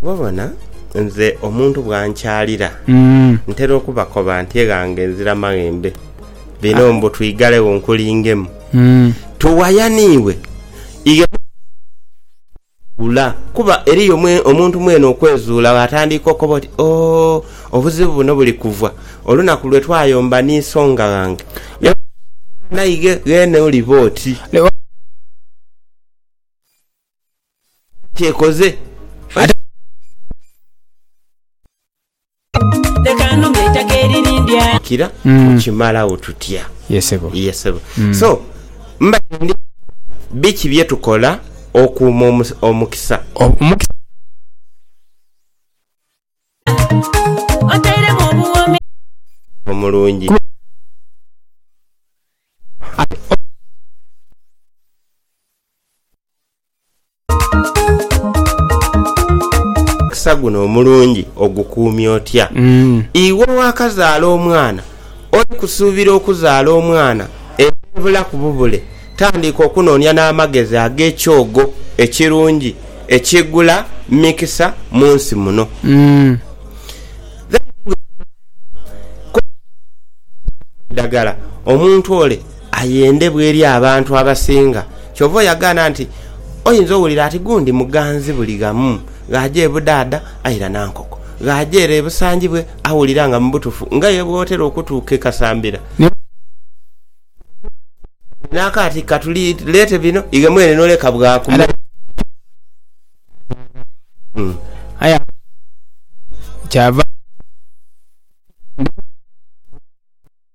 Oba obona nze omuntu bwankyalira ntera okubakoba nti eghange nzira maghembe bino mbu twigalegho nkulingemu. Tuwayaniwe. Ula. Kuba eriyo omuntu mwene okwezuula bw'atandiika okoba oti, Oo, obuzibu buno buli kuva olunaku lwe twayomba ni songa ghange. Naye bw'oba mwana ighe, ghene oliba oti. Naye bw'oba mwana wa Katonda, ghene oliba oti. Leka nunge eitaka eririndya. Kira Mm. kukimalagho tutya? Yes sebo. Ye sebo. Mm. So mbade ndi biki bye tukola okuuma omus- omukisa? Ob- omukisa. Otairemu obuwoomi. Omulungi. Omukisa guno omulungi ogukuumye otya? Iwe owaakazaala omwana, oli kusuubira okuzaala omwana era obulaku bubule? Tandika okunoonia n'amagezi ag'ekyogo ekirungi ekigula mikisa mu nsi muno. Then gwe kumanya ku kikola eidhagala omuntu ole Ayendebwa eri abantu abasinga. Kyova oyagaana nti oyinza owulira ati gundi muganzi buli ghamu, ghaaja ebudaadha aira nankoko, ghaaja ere ebusanjibwe awulira nga mubutufu nga ye bwotera okutuuka ekasambira. Ni bwino okuba nga olina akaati katuli leete bino ighe mwene noleka bwaaku mu. Adala ghaaja ebudaadha aira nankoko, aye aba alinze kyava akola. Ni bwino okuba nga olina akaati katuli leete bino ighe mwene noleka bwaaku mu.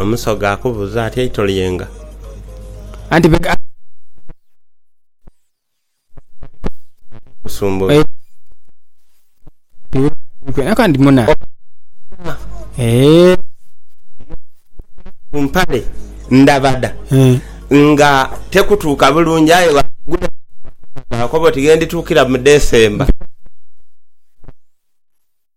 Omusoga akubuuza ati eito lyenga? Anti bwegaba nga omusumba oyo ku mpale ndabada nga tekutuuka bulungi aye bwagula eyo nakoba oti ghendituukira mu December.